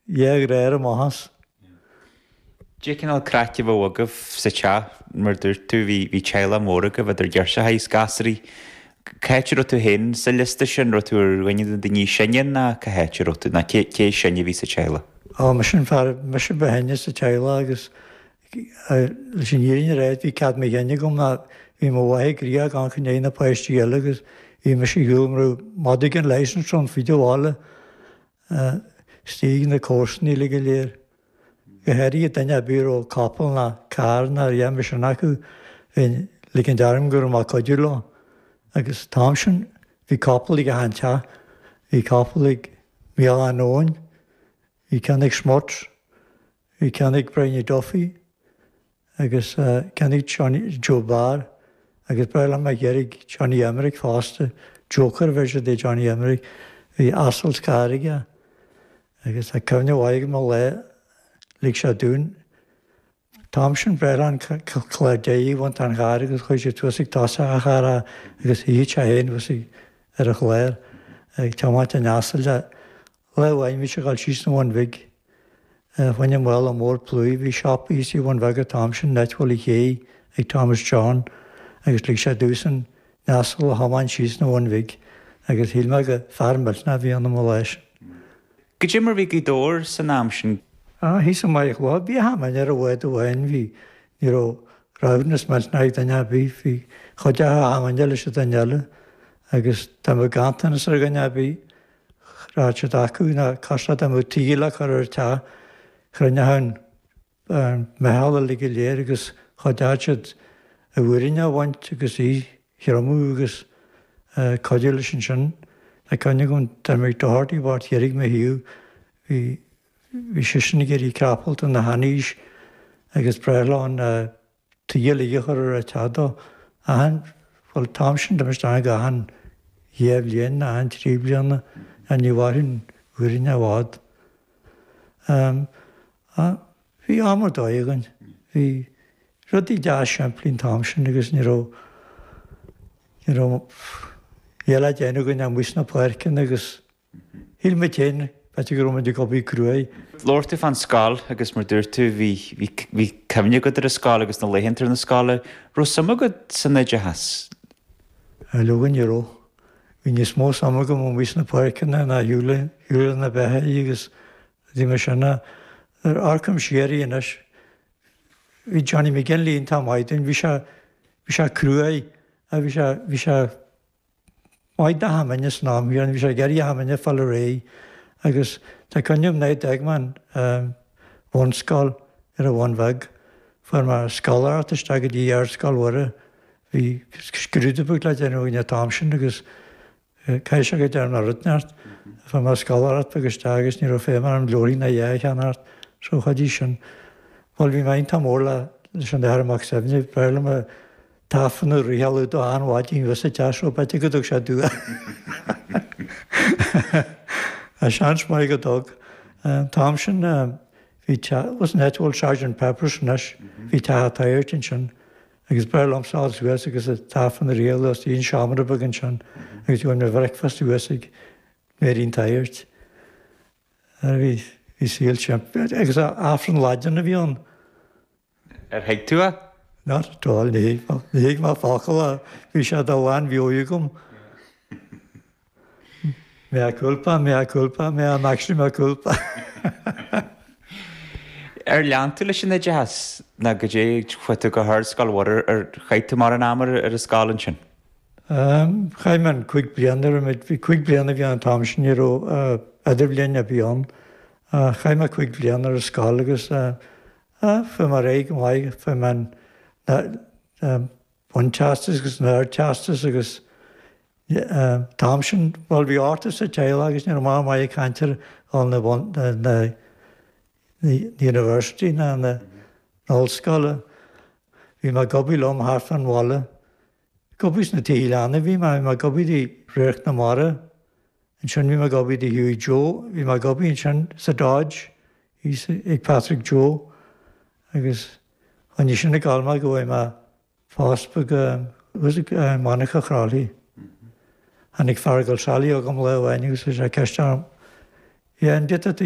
De réir a maitheas. Cé cineál craic a bheadh agaibh sa teach? Mar a dúirt tú, bhí teaghlach mór agaibh idir ghirseachaí agus gasraí. Cá háit a raibh tú féin sa liosta sin? Raibh tú ar dhuine de na daoine is sine ná cá háit a raibh tú, ná cé is sine a bhí sa teaghlach? Á, mise an fear, mise ba shine sa teaghlach agus leis an fhírinne a ráidht, bhí cead mo chinn agam ná bhí mo mháthair gnoitheach ag coinneáil na páistí eile agus bhí mise ar shiúl mar mhadadh gan leash ansin, ar fud an bhaile. Istigh ag na comharsana uilig go léir, go háirithe duine ar bith a raibh capall ná carr ná a dhath mar sin acu, bheinn ag ligint orm go raibh mé ag cuidiú leo. Agus an t-am sin, bhí capall ag achan teach, bhí capall ag Mícheál Átha Nóin, bhí ceann ag Smuts, Bhí ceann ag Briney Duffy agus ceann ag Joe Barr agus ba ghnách liom a ghabháil chuig Johnny Emerick fosta, joker version de Johnny Emerick. Bhí asal is carr aige agus tá cuimhne mhaith agam ar lá lig sé domh, an t-am sin ba ghnách linn an clár deiridh a bhaint den charr agus chuirfeadh sé thuas ag toiseach an charr agus shuífeadh sé fhéin thuas ar an chlár ag tiomáint an asail le Lá amháin bhí sé ag dul síos an Bhun Bhig. Fá choinne mála mór plúir. Bhí shop thíos i Bhun Bhig an t-am sin, Leitghill Uí Shé, ag Thomas John agus lig sé domhsa an t-asal a thiomáint síos an Bhun Bhig agus shíl mé gur fear millteanach a bhí ionam an lá sin. Caidé mar bhí Gaoth Dobhair san am sin. Á, thíos i Machaire Chlochair bhí achan duine ar an bhád amháin. Bhí, ní raibh saibhreas millteanach ag duine ar bith. Chuideodh achan duine leis an duine eile agus dá mbeadh ganntanas ar dhuine ar bith. chreid siad acu ná cás dá mbeadh tuí le cur ar an teach chruinneodh an mheitheal uilig go léir agus chuideodh siad an mhuiríneach a bhaint agus í a thriomú agus cuidiú leis ansin. Tá cuimhne agam, Jimmy Doherty i bPort Dheirg Mí Thiar, bhí bhí seisean ag éirí creapalta ina sheanaois agus ba ghnách linn, Tuí a chur ar an teach dó. Achan, bhuel, an t-am sin, dhéanfaí sin achan dhá bhliain, achan trí bliana, ní mhairfeadh an mhuiríneach i bhfad. Bhí am ar dóigh againn, bhí rudaí deas simplí an t-am sin agus ní raibh, ní raibh a dhath le déanamh againn ach amuigh sna páirceanna agus. Shíl muid féin b'fhéidir go raibh muid ag obair cruaidh. Labhair tú fán scoil agus mar dúirt tú bhí bhí cuimhne agat ar an scoil agus na laethanta ar na scoile. Raibh suim agat san oideachas? Á leoga ní raibh. Bhí níos mó suim agam amuigh sna páirceanna ná ar shiúl ar shiúl leis na beithígh agus rudaí mar sin. Nuair a amharcaim siar anois bhí Johnny McGinley iontach maith dúinn. Bhí sé bhí sé cruaidh ach bhí sé bhí sé Maith na hAmaine is ná miren, bhí sé ag éirí Amaine fala réidh, agus tá cuimhne agam nuair a d'fhág mé an bhunscoil ar an Bhun Bheag. Fuair mé scoláireacht isteach go dtí Ardscoil Mhuire. Bhí scrúdú beag le déanamh againn an t-am sin agus caithfidh sé go dearn mé rud ceart. Fuair mé scoláireacht beag isteach agus ní raibh feidhm orm leabharthaí ná a dhath a cheannacht so chuidigh sin. Bhuel, bhí mé iontach mór leis an Athair Mac Suibhne, b'fhearr liom an. tAifreann a fhriotháil dó ar maidin ná bheith sa teach seo, b'ait a gcuideodh sé dú a a seans maith go dtug an t-am sin bhí teach san áit a bhfuil Sergeant Pepper's anois bhí teach an tsagairt ansin agus b'fhearr liom siúl suas agus an tAifreann a fhriotháil as bhí an seomra beag ansin agus bhí mo bhricfeasta thuas ag Máirín an tsagairt bhí saol agus Aifreann Laidine a bhí ann Ar thuig tú é? Not at all, níor thuig mé, níor thuig mé aon fhocal de, bhí sé de ghlanmheabhair agam. Mea culpa, mea culpa, mea maxima culpa. Ar lean tú leis an oideachas ná caidé, chuaigh tú go hArdscoil Mhuire, ar chaith tú mórán ama ar an scoil ansin? Ehm, chaith mé an cúig bliana ar an méid, bhí cúig bliana a bhí ann an t-am sin, ní raibh idirbhliain ar bith ann, ach chaith mé cúig bliana ar an scoil agus eh, Fuair mé ar aghaidh go maith, fuair mé an bunteastas agus an ardteastas agus an t-am sin, bhuel, bhí ochtar sa teaghlach agus ní raibh maith a bheith ag caint ar dhul na university ná na hollscoile. Bhí mé ag obair liom thart fán bhaile. Ag obair sna tithe leanna a bhí mé, bhí mé ag obair do Radharc na Mara, ansin bhí mé ag obair do Hughie Joe, bhí mé ag obair ansin sa Dodge ag Patrick Joe agus choinnigh sin ag gabháil mé go bhfuair mé post beag i Monarcha Chroithlí. Tháinig Feargal Sally chugam lá amháin agus chuir sé ceist orm, Yeah, an dtig leat a